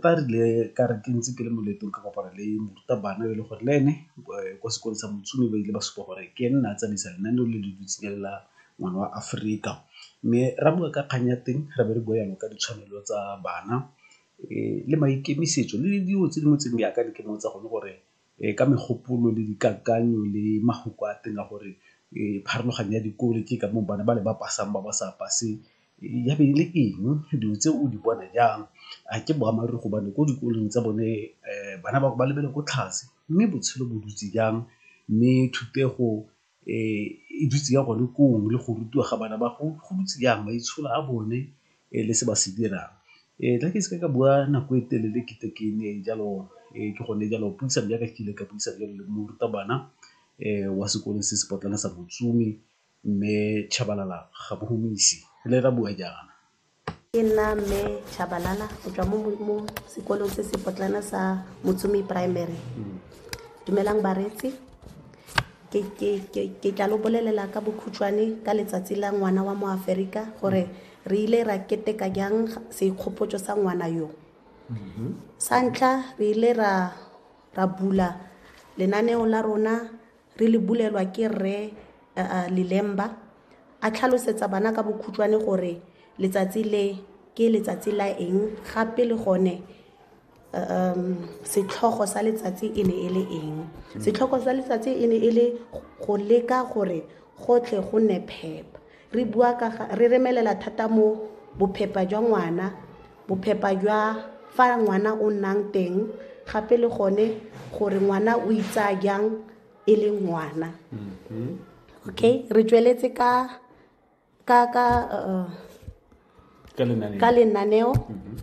Fa re ile ka re ke ntse ke le mo leetong ka kopana le morutabana e le gore le ene kwa sekolong sa Motsu ba ile ba supa gore ke ene na tsamaisa lenaneo le le dutsing la ngwana wa Aforika. Mme ra bua ka kgang ya teng re be re bua jalo ka ditshwanelo tsa bana le maikemisetso le dilo tse dingwe tse di jaaka di ke mmotsa gone gore ka megopolo le dikakanyo le mafoko a teng a gore pharologanyo ya dikole ke ka moo bana ba le ba pasang ba ba sa paseng ya be e le eng, dilo tse o di bona jang, a ke boammaaruri gobane ko dikolong tsa bone bana ba lebelele ko tlase mme botshelo bo dutse jang mme thutego e dutse ya gone koo le go rutiwa ga bana ba go dutse yang, maitsholo a bone le se ba se dirang. Nna ke seke ka bua nako e telele ke tle ke ne jalo ke gone jalo puisano ya ka ke ile ka buisana jalo le morutabana wa sekolo se se potlana sa Mme Tshabalala Gabohumisi, re ne ra bua jaana. Ke nna Mme Tshabalala go tswa mo sekolong se se potlana sa Motsomi Primary. Dumelang bareetsi, ke tla lo bolelela ka bokhutshwane ka letsatsi la ngwana wa mo Aferika gore re ile ra keteka jang seikgopotso sa ngwana yo. Sa ntlha re ile ra bula lenaneo la rona re le bulelwa ke rre lelemba a tlhalosetsa bana ka bokhutshwane gore letsatsi le ke letsatsi la eng gape le gone um setlhogo sa letsatsi e ne e le eng setlhogo sa letsatsi e ne e le go leka gore gotlhe go nne phepa Re bua ka ga re remelela thata mo bophepa jwa ngwana, bophepa jwa fa ngwana o nnang teng gape le gone gore ngwana o itsaya jang e le ngwana. Okay, re tsweletse ka ka ka uh, ka lenaneo mhm.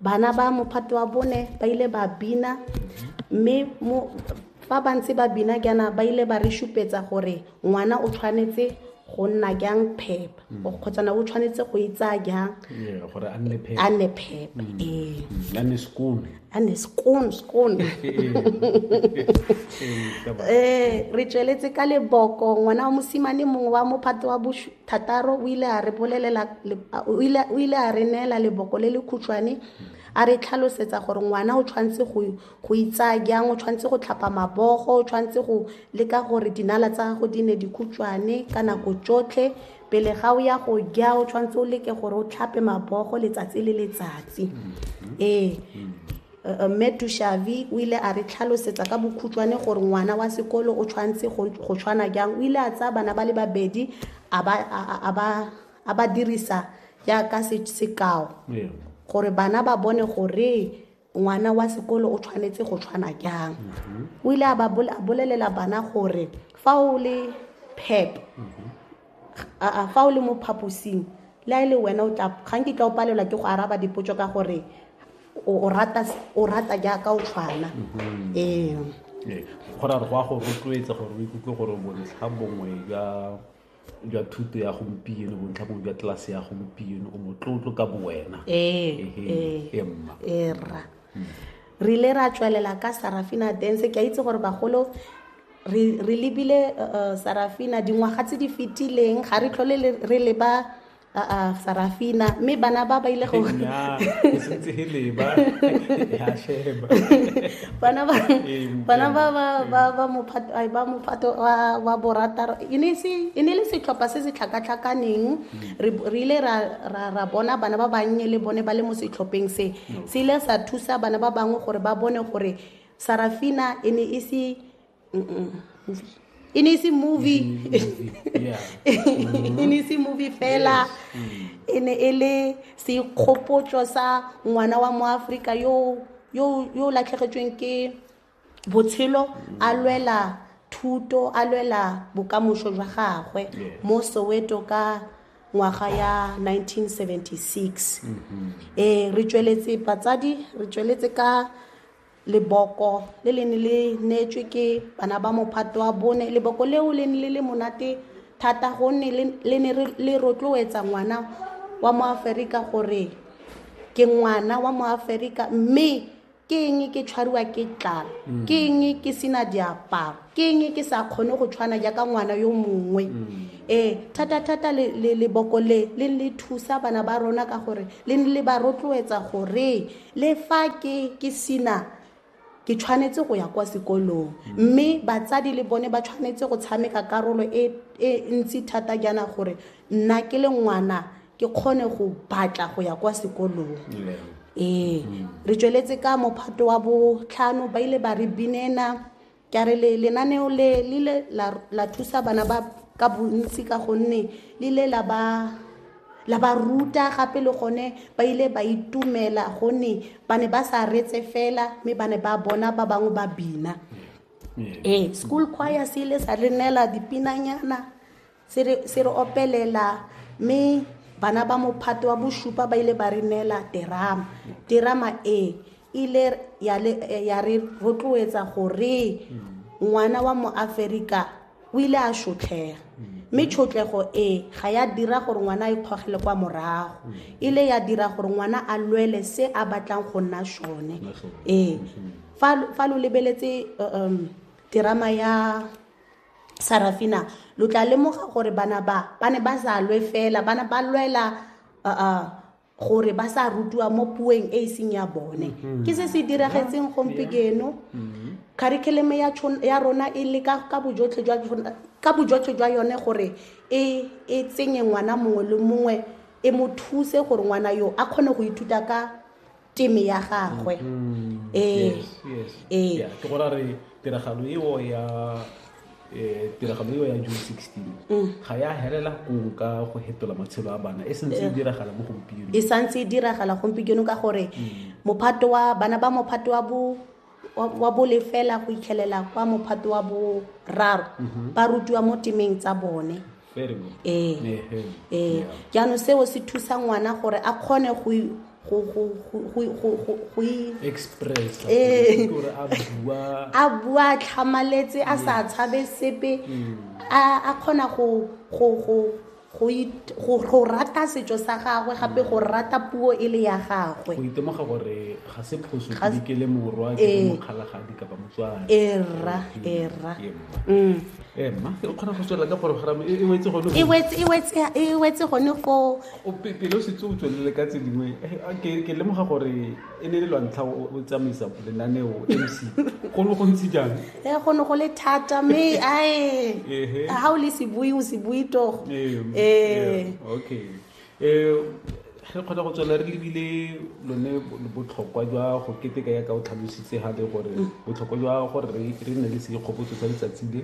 bana ba mophato wa bone ba ile ba bina mme fa ba ntse ba bina jaana ba ile ba re supetsa gore ngwana o tshwanetse go nna jang phepa mm. kgotsana o tshwanetse go itsaya jang gore a nne phepa a nne phepa mm. ee mm. a nne skoon a nne skoon skoon ee re tsweletse ka leboko ngwana wa mosimane mongwe wa mophato wa thataro o ile a re bolelela o ile o ile a re neela leboko le le khutshwane a re tlhalosetsa gore ngwana o tshwanetse go go itsaya jang o tshwanetse go tlhapa mabogo o tshwanetse go leka gore dinala tsa gago di ne di khutshwane ka nako tsotlhe pele ga o ya go ja o tshwanetse o leke gore o tlhape mabogo letsatsi le letsatsi ee Mme Tushavi o ile a re tlhalosetsa ka bokhutshwane gore ngwana wa sekolo o tshwanetse go go tshwana jang. O ile a tsaya bana ba le babedi a ba a- a- a ba a ba dirisa jaaka se- sekao Ee. gore bana ba bone gore ngwana wa sekolo o tshwanetse go tshwana jang o ile a ba bol- a bolelela bana gore fa o le pep aa fa o le mo phaposing le a e le wena o tla ga nkitla o palelwa ke go araba dipotso ka gore o o rata o rata jaaka o tshwana Mhm. ee Ee, go ra re go a go rotloetsa gore o ikutlwe gore bontlha bongwe jwa jwa thuto ya gompieno bontlha bongwe jwa tlelase ya gompieno o motlotlo ka bowena ee Ehe, ee ee, mma era re ile ra tswelela ka sarafina dance ke a itse gore bagolo re lebile sarafina dingwaga tse di fetileng ga re tlhole re leba a sarafina mme bana ba ba ile go bana ba bana ba ba ba ba mophato ba mophato wa wa borataro e ne se e ne le setlhopha se se tlhakatlhakaneng re re ile ra ra ra bona bana ba bannye le bone ba le mo setlhopheng se se ile sa thusa bana ba bangwe gore ba bone gore Sarafina e ne e se e ne e se movie e ne e se movie fela e ne e le sekgopotso sa ngwana wa mo Afrika yo yo yo latlhegetsweng ke botshelo a lwela thuto a lwela bokamoso jwa gagwe mo Soweto ka ngwaga ya 1976 eh re tsweletse batsadi re tsweletse ka leboko le le ne le neetswe ke bana ba mophato wa bone leboko leo le ne le le monate thata gonne le ne le rotloetsa ngwana wa mo aferika gore ke ngwana wa mo aferika mme ke eng ke tshwariwa ke tlala mm. ke eng ke sena diaparo ke eng ke sa kgone go tshwana jaaka ngwana yo mongwe ee thata-thata leboko le le le thusa bana ba rona ka gore le ne le ba rotloetsa gore le fa ke ke sina ke tshwanetse go ya kwa sekolong mme batsadi le bone ba tshwanetse go tshameka karolo e e ntsi thata jaana gore nna ke le ngwana ke kgone go batla go ya kwa sekolong ee re tsweletse ka mophato wa botlhano ba ile ba re binela Ke a re le lenaneo le le ile la la thusa bana ba ka bontsi ka gonne le ile la ba la ba ruta gape le gone ba ile ba itumela gonne ba ne ba sa retse fela mme ba ne ba bona ba bangwe ba bina ee school choir se ile sa re neela dipinanyana Se re, se re opelela mme bana ba mophato wa bosupa ba ile ba re neela terama terama e ile ya, le, eh, ya re rotloetsa gore ngwana wa moaferika o ile a shotlhega mme tshotlego e ga ya dira gore ngwana a ikgogele kwa morago ile ya dira gore ngwana a lwele se a batlang go nna sone ee fa fa lo lebeletse uh, um, terama ya sarafina lo tla lemoga gore bana ba ba ne ba sa lwe fela bana ba lwela gore ba sa rutiwa mo puong e e seng ya bone mm-hmm. ke se se diragetseng gompieno mm-hmm. curriculum ya rona e le ka bojotlhe jwa yone gore e, e tsenye ngwana mongwe le mongwe e mo thuse gore ngwana yo a kgone go ithuta ka teme ya gagwe mm-hmm. ee ee ke go ra re tiragalo eo ya eh, tiragalo eo ya june 16 mm. ga ya helela kong ka go hetola matshelo a bana e santse e diragala mo gompieno e santse e diragala gompieno ka gore mm. mophato wa bana ba mophato wa bo wa, wa bolefela go itlhelela kwa mophato wa boraro ba rutiwa mo temeng tsa bone Very good. ee Ehe. ee Yeah. jaanong seo se thusa ngwana gore a kgone go i- go go go go- go go go i- Express. Eh. Gore a bua. a bua a tlhamaletse a sa tshabe sepe a a kgona go go go go, it, go, go rata setso sa gagwe gape go rata puo e le ya gagwe go itemoga gore ga se phoso Ga se- ke ke le morwa ke Eh. le mokgalagadi kapa motswana era era Ke mma. mm. Eh, mma o kgona go tswelela ka porogoramo e e wetse gone e go- wetse- e wetse- e wetse gone foo o pe- pele o setse o tswelele ka tse dingwe eh, ke ke lemoga gore e ne le lwantlha o tsamaisa lenaneo mc go ne go ntse jang e go ne go le thata mme ae ga o le sebui o sebui togo ee okay um re kgona go tswela re lebile lone botlhokwa jwa go keteka ya ka o tlhalositse gape gore mm. botlhokwa jwa gore re nne le seikgopotso sa letsatsi le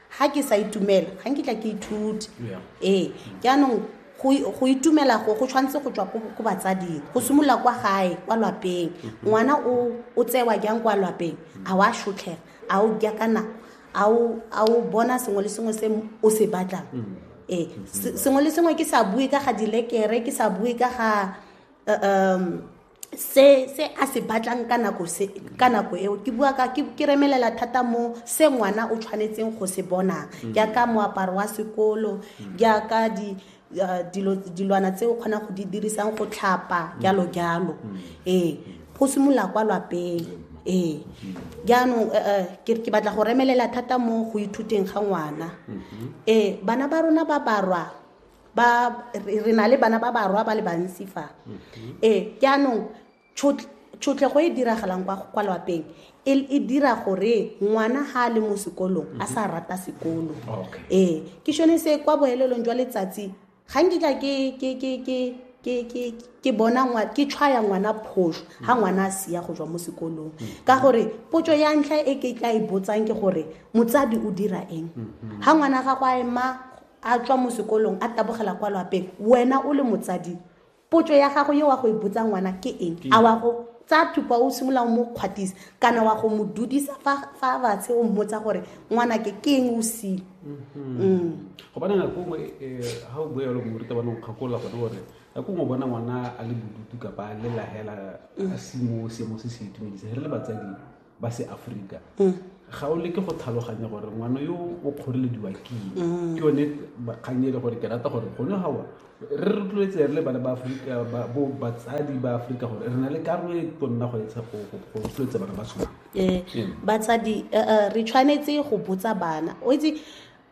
ga ke sa itumela ga nkitla ke ithute ee jaanong go itumela go go tshwanetse go tswa ko batsading go simolola kwa gae kwa lwapeng mm-hmm. ngwana o tsewa jang kwa lwapeng a wa shotlhega a o ja ka nako a o bona sengwe le sengwe se o se batlang mm-hmm. ee sengwe le sengwe ke sa bue ka ga dilekere ke sa bue ka ga um se se a se batlang ka nako se ka nako eo ke bua ka ke remelela thata mo se ngwana o tshwanetseng go se bona mm. jaaka moaparo wa sekolo mm. jaaka di uh, dilo dilwana tse o kgonang go di dirisang go tlhapa mm. jalo jalo ee go simolola kwa lwapeng ee jaanong eh, eh, ke batla go remelela thata mo go ithuteng ga ngwana mm-hmm. ee bana ba rona ba barwa ba re na le bana ba barwa ba le bantsi fa mm-hmm. ee jaanong tshotlhego e diragalang kwa lwapeng e, e dira gore ngwana ga a le mo sekolong a sa mm-hmm. rata sekolo ee ke sone se kwa boelelong jwa letsatsi ga nkitla ke bona ke tshwaya ngwana phoso ga mm. ngwana a sia go jwa mo sekolong mm. ka gore potso ya ntlha e ke tla e botsang ke gore motsadi o dira eng ga mm-hmm. ngwana ga go a ema a tswa mo sekolong a tabogela kwa lwapeng wena o le motsadi potso ya gago yo wa go e botsa ngwana ke eng a wa go tsa thupa o simolola o mo kgwatisa kana wa go mo dudisa fa fa batshe o mmotsa gore ngwana ke ke eng o sile go bana nako nngwe ga o boelo moruta bana o kgakola gone gore nako nngwe bona ngwana a le bodutu kapa a le lahela a se mo seemo se se itumedisa re le batsadi ba se aforika mm. ga o leke go tlhaloganya gore ngwana yo o kgorelediwa keng mm. ke yone kgang e le gore ke rata gore gone gawa re rotloetse re le bana ba aforika bo batsadi ba aforika gore re na le karolo e tonna go etsha go rotloetsa bana ba sona ee, batsadi eh, eh, re tshwanetse go botsa bana o itse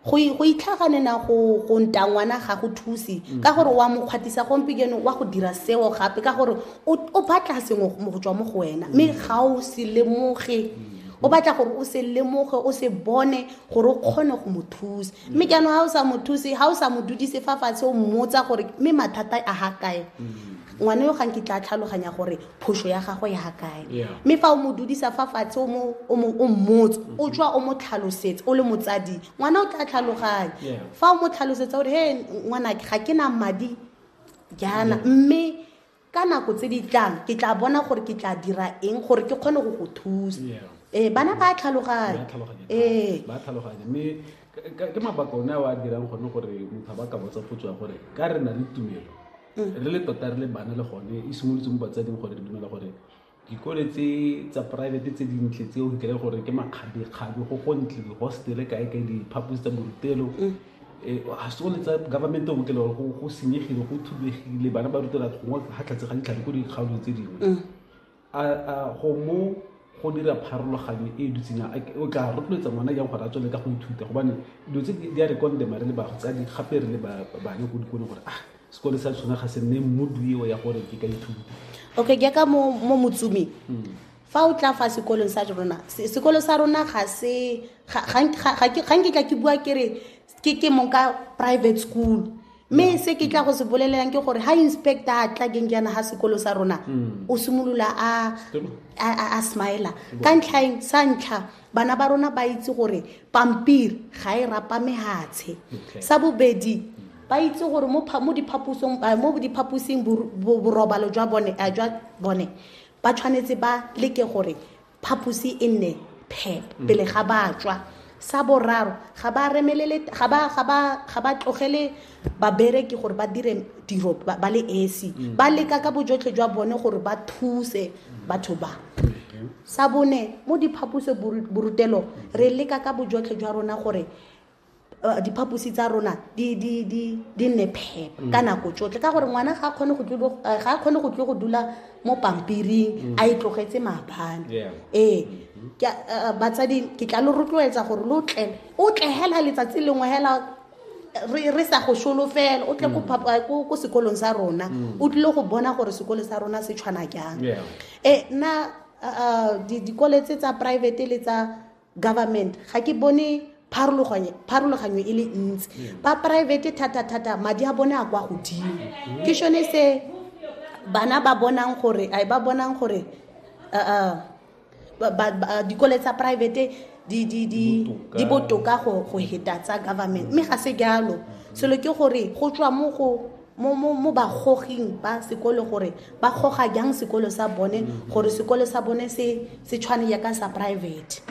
go itlhagane na go nta ngwana ga go thuse mm. ka gore wa mokgwatisa gompekeno wa go dira seo gape ka gore o batla sengwe go tswa mo go wena mme mm. ga o se lemoge mm. o batla gore o se lemoge o se bone gore o kgone go mo thusa mme jaanong ga o sa mo thuse ga o sa mo dudise fa fatshe o mmotsa gore mme mathata a ga kae ngwana yo ga nkitla a tlhaloganya gore phoso ya gago ya ga kae mme fa o mo dudisa fa fatshe o mmotse o mm-hmm. tswa o mo tlhalosetse o le motsadi ngwana o tla tlhaloganya fa o mo tlhalosetsa gore he ngwanake ga ke na madi jaana mme ka nako tse di tlang ke tla bona gore ke tla dira eng gore ke kgone go go thusa ee bana ba tlhaloganya ee mme ke mabaka one a o a dirang gone gore motho ba ka botsa potso ya gore ka re na le tumelo mm. re le tota re le bana le gone e simolotse mo batsading gore re dumela gore dikole tse tsa private tse dintle tse o kry gore ke makgabekgabe go gontle dihostele kae kae diphaposi tsa borutelo mm. eh, ga se one tsa government o kele gore go senyegile go thubegile bana ba rutela gongwe ga tlhatse ga ditlhare ko dikgaolong tse dingwe mm. a go mo go dira pharologanyo e e dutseng o tla rotloetsa ngwana jang gore a tswele ka go ithuta gobane dilo tse di a re kondema re le batsadi gape re le bane ko dikolong gore ah sekole sa tshwana ga se nne mmodu eo ya gore ke ka ithuta okay ke ka mo motsumi hmm. fa o tla fa sekolong sa rona sekolo sa rona ga se ga nkitla ke bua kere ke ke mong ka private school mme se ke tla go se bolelelang ke gore ha inspector a tla keng jaana ga sekolo sa rona o simolola a a- a- a smila ka ntlhaeng sa ntlha bana ba rona ba itse gore pampiri ga e rapa mehatshe Okay. sa bobedi ba itse gore mo pha- mo diphaposong eh, mo diphaposing bor- bo- borobalo jwa bone eh, jwa bone ba tshwanetse ba leke gore phaposi e nne phe mm. pele ga batswa sa boraro ga ba remelele ga ba ga ba ga ba tlogele babereki gore ba dire tiro ba le esi mm. ba leka ka bojotlhe jwa bone gore ba thuse batho ba sa bone mo diphaposo borutelo re leka ka bojotlhe jwa rona gore Eh, diphaposi tsa rona di nne phepa mm. ka nako tsotlhe ka gore ngwana ga a kgone go eh, tlo go dula mo pampiring mm. a e tlogetse maabane ee mm-hmm. eh, batsadi ke tla lo rotloetsa gore lo tle o tle hela letsatsi lengwe hela re sa go solofela o tle mm. ko sekolong sa rona o tlile go bona gore sekolo sa rona se tshwana jang ee nna dikoletse tsa private le tsa government ga ke bone pharologanyo e le ntsi mm. ba private thata-thata madi a bone a kwa godimo mm. ke shone se bana ba bonang gore a ba bonang gore dikole tsa private di botoka go heta tsa government mme ga se jalo selo ke gore go tswa mo go mo mo mo bagoging ba sekolo gore ba goga jang sekolo sa bone mm. gore sekolo sa bone se se tshwane yaka sa private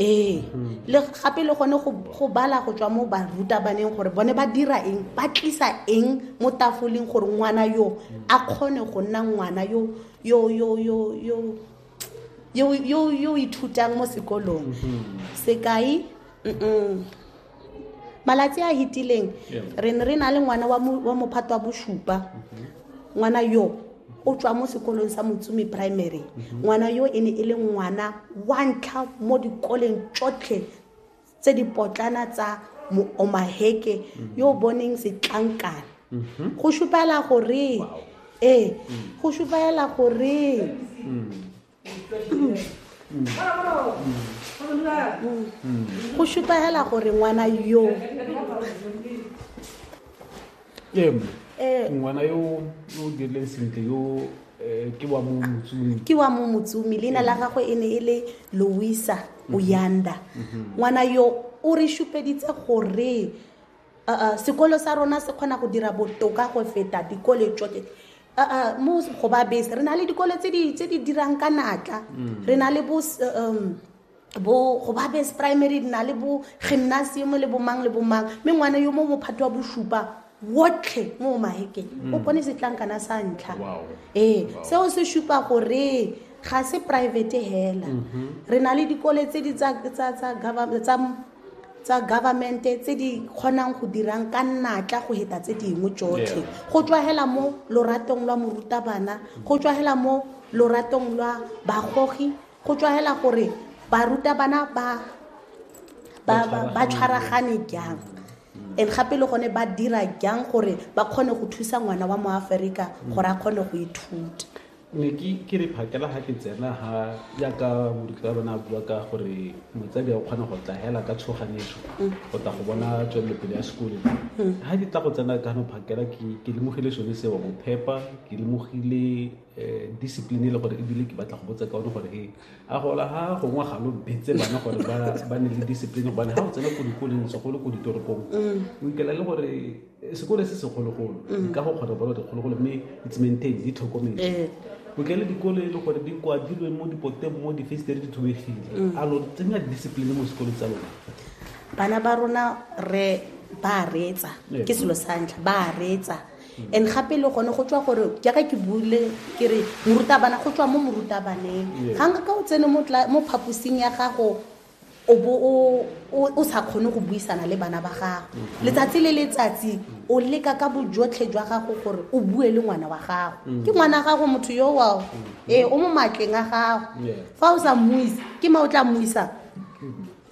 ee mm. le gape le gone go bala go tswa mo barutabaneng gore bone ba dira eng ba tlisa eng mo tafoleng gore ngwana yo mm. a kgone go nna ngwana yo yo yo yo yo yo yo yo ithutang mo sekolong mm-hmm. sekai mm malatsi a hitileng re ne re na le ngwana wa mophato wa bosupa mhm. ngwana yo o tswa mo sekolong sa motsumi primary mhm. ngwana yo e ne e le ngwana wa ntlha mo dikoleng tsotlhe tse di potlana tsa omaheke mhm. yo o boneng setlankana go supela gore ee go supela gore mm. go šupagela gore ngwana yo ngwana yo o dirileng sentle yo eh, ke wa mo motsumi ke wa mo motsumi leina la gagwe e ne e le louisa mhm. oyanda mhm. ngwana yo o re šupeditse gore uh, sekolo sa rona se kgona go dira botoka go feta dikole tsoke uh, mo go ba bese re na le dikole tse di dirang ka natla mm. re na le bo um, bo go ba base primary di na le bo gymnasium le bomang le bomang mme ngwana yo mo mophato wa bosupa wotlhe mo mahekeng mm. o bone setlankana sa ntlha ee eh, seo se supa gore ga se private hela mm-hmm. re na le dikole tse di tsa tsa government tse di kgonang go dirang ka natla go heta tse dingwe tsotlhe go tswagela mo loratong lwa morutabana go tswagela mo loratong lwa bagogi go tswagela gore barutabana ba ba tshwaragane jang and gape le gone ba dira jang gore ba kgone go thusa ngwana wa mo aforika gore a kgone go ithuta ne ke re phakela ga ke tsena ga yaka moruti wa rona a bua ka gore motsadi a o kgona go tla hela ka tshoganetso go tla go bona tswelelopele ya sekole ga ke tla go tsena ka no phakela ke lemogile sone seo go phepa ke lemogile um discipline e le gore ebile ke batla go botsa ka one gore e a gola ga gongwe ga lo betse bana gore ba ne le discipline gobane ga o tsena ko dikoleng segolo ko ditoropong o ikela le gore sekole se segologolo dikago mm. kgotsa bolo dikgologolo mme it's maintain di tlhokomele eh. botlele dikolo e le gore di kwadilwe mo dipoteng mo difestere di thubegile mm. a lo tsenya discipline mo sekolong tsa lona bana ba rona re ba reetsa eh. ke selo sa ntlha ba reetsa mm. and gape le gone go tswa gore jaaka ke bule ke re morutabana go tswa mo morutabaneng ga nka ka o tsene mo phaposing ya gago o bo o sa kgone go buisana le bana ba gago mm-hmm. letsatsi le letsatsi o leka ka bojotlhe jwa gago gore o bue le ngwana wa gago mm-hmm. ke ngwana wa gago motho yo wao mm-hmm. ee o mo matleng a gago fa o sa mmuise ke ma o tla mmuisa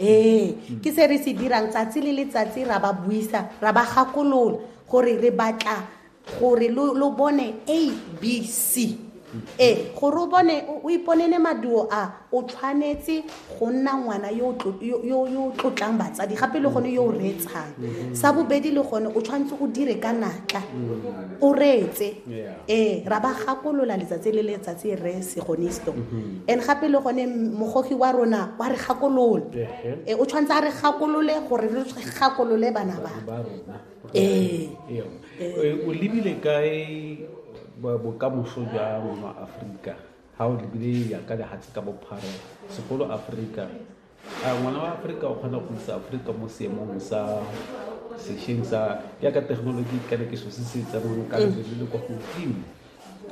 ee ke se re se dirang tsatsi le letsatsi ra ba buisa ra ba gakolola gore re batla gore lo bone a b c ee gore o bone o iponene maduo a o tshwanetse go nna ngwana yo o tlotlang batsadi gape le gone yo o reetsang sa bobedi le gone o tshwanetse o dire ka natla o reetse ee ra ba gakolola letsatsi le letsatsi re segonisto mm-hmm. and gape le gone mogogi wa rona wa re gakolola ee o tshwanetse a re gakolole gore re gakolole bana ba ee o lebile kae bokamoso jwa rona aforika ga o lebile ya ka lehatshe ka bophara segolo aforika a ngwana wa aforika o kgona go isa aforika mo seemong sa sešweng sa yaka thekenoloji kana ke so se se tsamayng ka lebele le kwa godimo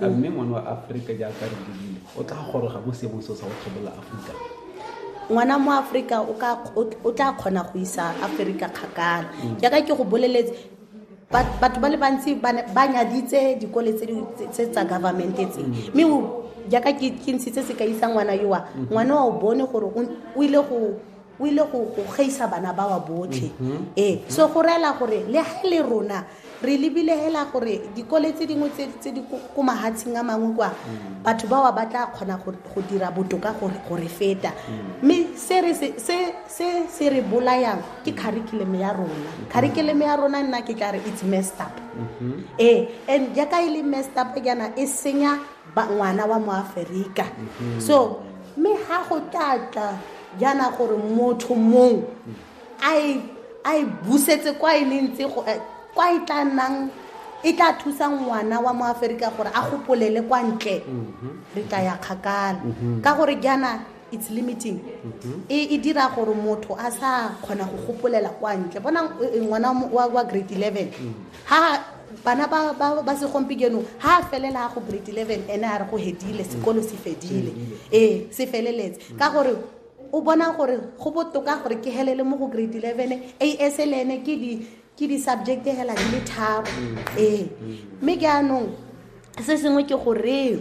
a mme ngwana wa aforika jaaka re lebile o tla goroga mo seemong seo sa go tlhobola aforika ngwana mo aforika o tla kgona go isa aforika kgakala mm. jaaka ke go boleletse batho ba le bantsi ba nyaditse dikole tse tsa government tse mm. mme jaaka ke ntshitse se ka isa ngwana yowa mm. ngwana wa o bone gore o ile go o ile go gaisa bana ba wa botlhe mhm. ee so go reela gore le ga le rona re lebile hela gore dikole tse dingwe tse di ko mahatsheng a mangwe kwa mm. batho ba wa ba tla kgona go dira botoka gore feta mm. mme se se re bolayang ke curriculum ya rona mm-hmm. curriculum ya rona nna ke tla re it's messed up mm-hmm. ee and jaaka e le messed up jaana e senya ngwana wa moaferika mm-hmm. so mme ga go tlatla jaana gore motho mong a e busetse kwa e leng tse go eh, kwa e tla nnang e tla thusa ngwana wa moaferika gore a gopolele kwa ntle mm-hmm. re tla ya kgakala mm-hmm. ka gore jaana it's limiting mm-hmm. e, e dira gore motho a sa kgona go gopolela kwa ntle bona e, e, ngwana wa grade eleven mm. ha bana ba, ba, ba segompieno ha a felela go grade eleven ene a re go hedile sekolo se fedile ee se feleletse mm. ka gore o bona gore go botoka gore ke helele mo go grade eleven a s le ene ke di ke di-subject hela di le tharo mm. ee mm. mme ke anong se sengwe ke goreng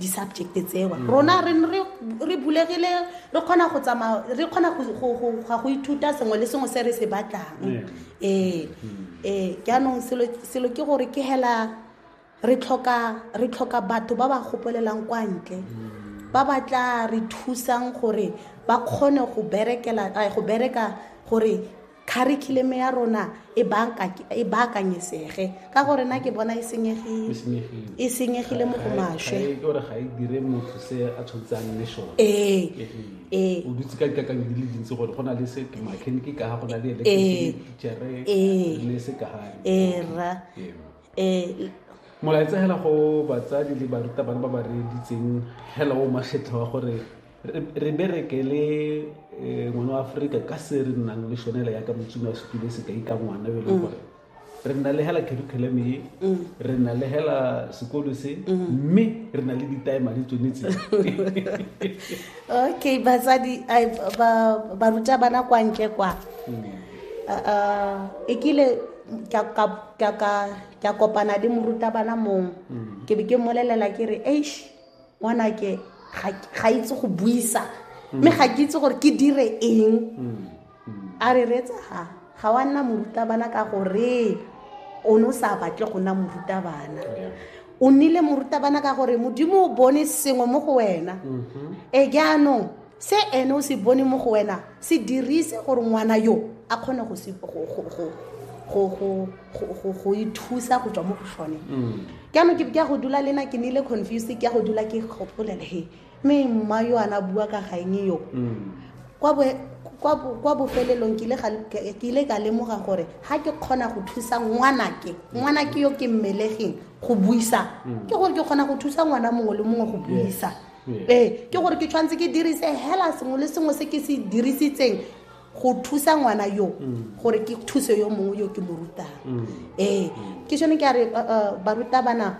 di-subject tseo mm. rona re bulegile re kgona go tsamaya re kgona ga go ithuta sengwe le sengwe se re se batlang ee ee eh, mm. eh, jaanong selo ke gore ke hela re tlhoka batho ba ba gopolelang kwa ntle mm. ba ba tla re thusang gore ba kgone go berekela go bereka gore curriculum ya rona e, e baakanyesege ka gore na ke bona e senyegile e senyegile mo go maswe ee ee o dutse ka dikakanyo di le dintsi gore go na le se mechanic ka go na le electricithere ee. le se ka ga ee ra ee molaetsa hela go batsadi le barutabana ba ba reeditseng hela o magetlha wa gore re berekele eh, ngwana wa aforika ka se re nnang le shonela yaka motsumi wa setulo sekai ka ngwana e leng gore re nna le hela curriculum e re nna le hela sekolo se mme re na le ditaema le tsone tse okay batsadi ai, ba ba ruta bana kwa ntle kwa Ah, ah, e kile ka ka ka ka ka kopana le moruta bana mong ke be ke mmolelela ke re eish ngwanake ga itse go buisa mme ga ke itse gore ke dire eng a re reetsa ga ga wa nna morutabana ka gore o ne o sa batle go nna morutabana o nnile morutabana ka gore modimo o bone sengwe mo go wena e jaanong se ene o se bone mo go wena se dirise gore ngwana yo a kgone go ithusa go tswa mo go sone jaanong mm. ke ya go dula le na ke nile confused ke ya go dula ke gopolele he mme mma yo ana bua ka gaeng yo mm. kwa bofelelong ke ile ka lemoga gore ga ke kgona go thusa ngwanake mm. ngwanake yo ke mmelegeng go buisa ke gore ke kgona go thusa ngwana mongwe le mongwe go buisa ee ke gore ke tshwanetse ke dirise hela sengwe le sengwe se ke se dirisitseng go thusa ngwana yo mm. gore ke thuse yo mongwe yo ke mo rutang mm. ee ke sone ke a re barutabana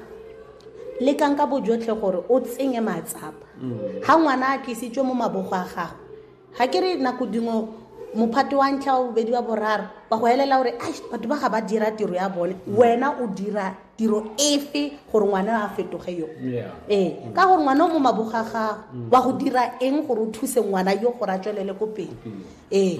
le kang ka bojotlhe gore o tsenye matsapa ga mm. ngwana a tlisitswe mo mabogo a gago ga ke re nako dingwe mophato wa ntlha wa bobedi wa boraro ba go elela gore a batho ba ga ba dira tiro ya bone wena o dira tiro efe gore ngwana a fetoge yo ee ka gore ngwana o mo maboga gago mm. wa go dira eng gore o thuse ngwana yo gore a tswelele ko pele ee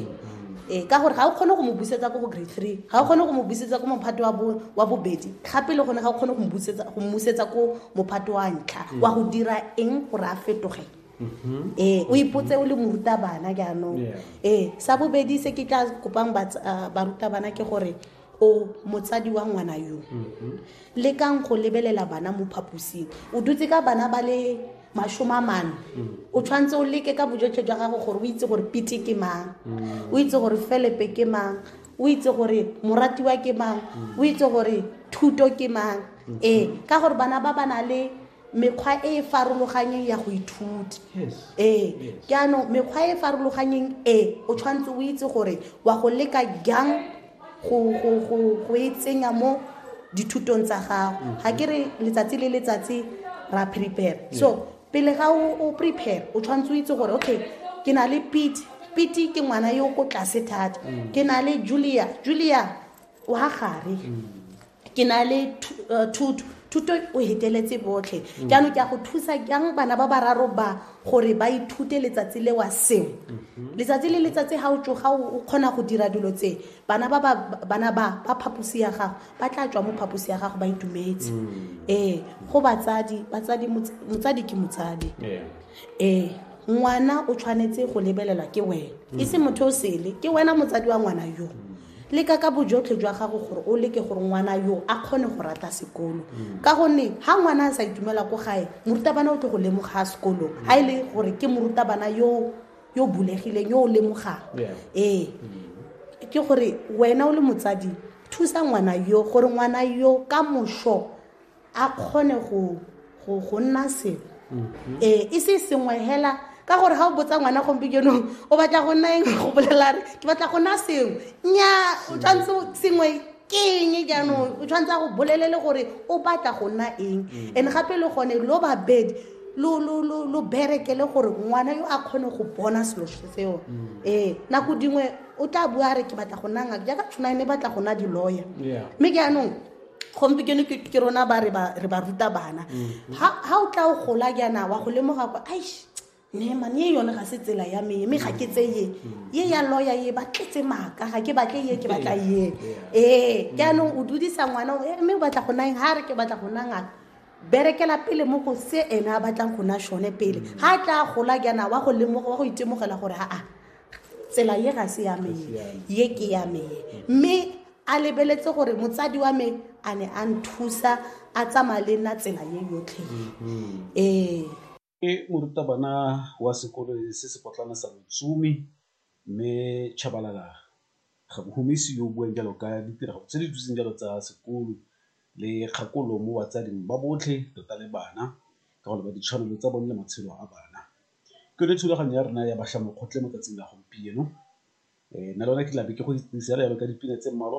ee ka gore ga o kgone go mo busetsa ko go grade three ga o kgone go mo busetsa ko mophato wa bobedi gape le gone ga o kgone go mmusetsa ko mophato wa ntlha wa go dira eng gore a fetoge Mm-hmm. ee o ipotse o le morutabana jaanong ee sa bobedi se ke tla kopang ah, barutabana ke gore o motsadi wa ngwana yo mm-hmm. le kang go lebelela bana mo phaposing o dutse ka bana ba le masome a mane mm. o tshwanetse o leke ka bojotlhe jwa gago gore o itse gore pete ke mang mm. o itse gore felepe ke mang o itse gore moratiwa ke mang mm. o itse gore thuto ke mang mm-hmm. ee ka gore bana ba ba na le mekgwa e e farologanyeng ya go ithuta ee ke anong mekgwa e e farologanyeng e o tshwanetse o itse gore wa go leka jang go e tsenya mo dithutong tsa gago mm-hmm. ga ke re letsatsi le letsatsi ra prepare so pele ga o prepare o tshwanetse o itse gore okay ke na le pete pete ke ngwana yo ko tlase thata mm. ke na le julia julia wa gare mm. ke na le eh, thuto thuto o heteletse botlhe mm. jaanong ke a go thusa jang bana ba bararo ba gore ba ithute letsatsi le wa sengwe mm-hmm. letsatsi le letsatsi ga o tsoga o kgona go dira dilo tse bana ba bana ba ba phaposi ya gago ba tla tswa mo phaposi ya gago ba itumetse mm. ee go batsadi batsadi motsadi ke motsadi ee ngwana o tshwanetse go lebelelwa ke wena e se motho o sele ke wena motsadi wa ngwana yo mm. leka ka bojotlhe jwa gago gore o leke gore ngwana yo a kgone go rata sekolo mm. ka gonne ga ngwana a sa itumela ko gae morutabana o tle go lemoga sekolong ga e le gore ke morutabana yo yo bulegileng yo o lemogang ee mm. ke gore wena o le motsadi thusa ngwana yo gore ngwana yo ka moso a kgone go nna selo mm-hmm. ee e se sengwe hela ka gore ga o botsa ngwana gompikenong o batla go nna eng go bolela re ke batla go nna sengwe nya o tshwanetse sengwe ke eng jaanong o tshwanetse go bolelele gore o batla go nna eng mm. and gape le gone lo babedi lo berekele gore ngwana yo a kgone go bona selo seo mm. ee nako dingwe o tla bua re ke batla go nna ngaka jaaka tshwana e ne batla go nna di-lawyer mme jaanong gompieno ke ke rona ba re ba re ba ruta bana ha ha o tla o gola jaana wa go lemoga kwa aish ne mane ye yone ga se tsela ya me mme ga ke tse ye ye ya lawyer ye ba tletse maaka ga ke batle ye ke batla ye ee jaanong o dudisa ngwana o, "Eh, mme o batla go nang ha re ke batla go nang ngaka berekela pele mo go se ene a batlang go na shone pele ga a tla gola jaana wa go lemoga wa go itemogela gore aa tsela ye ga se ya me ye ke ya me mme a lebeletse gore motsadi wa me a ne a nthusa a tsamaya le nna tsela ye yotlhe ee ke morutabana wa sekolo se se potlana sa botsumi mme chabalala ga bohumisi yo o buang jalo ka ditirago tse di duseng jalo tsa sekolo le kgakolo mo batsading ba botlhe tota le bana ka gore ba ditshwanelo tsa bone le matshelo a bana Ke yone thulaganyo ya rona ya bašwa mokgotlhe mo tsatsing la gompieno, nna le wena ke tla be ke go itsise fela jalo ka dipina tse mmalwa.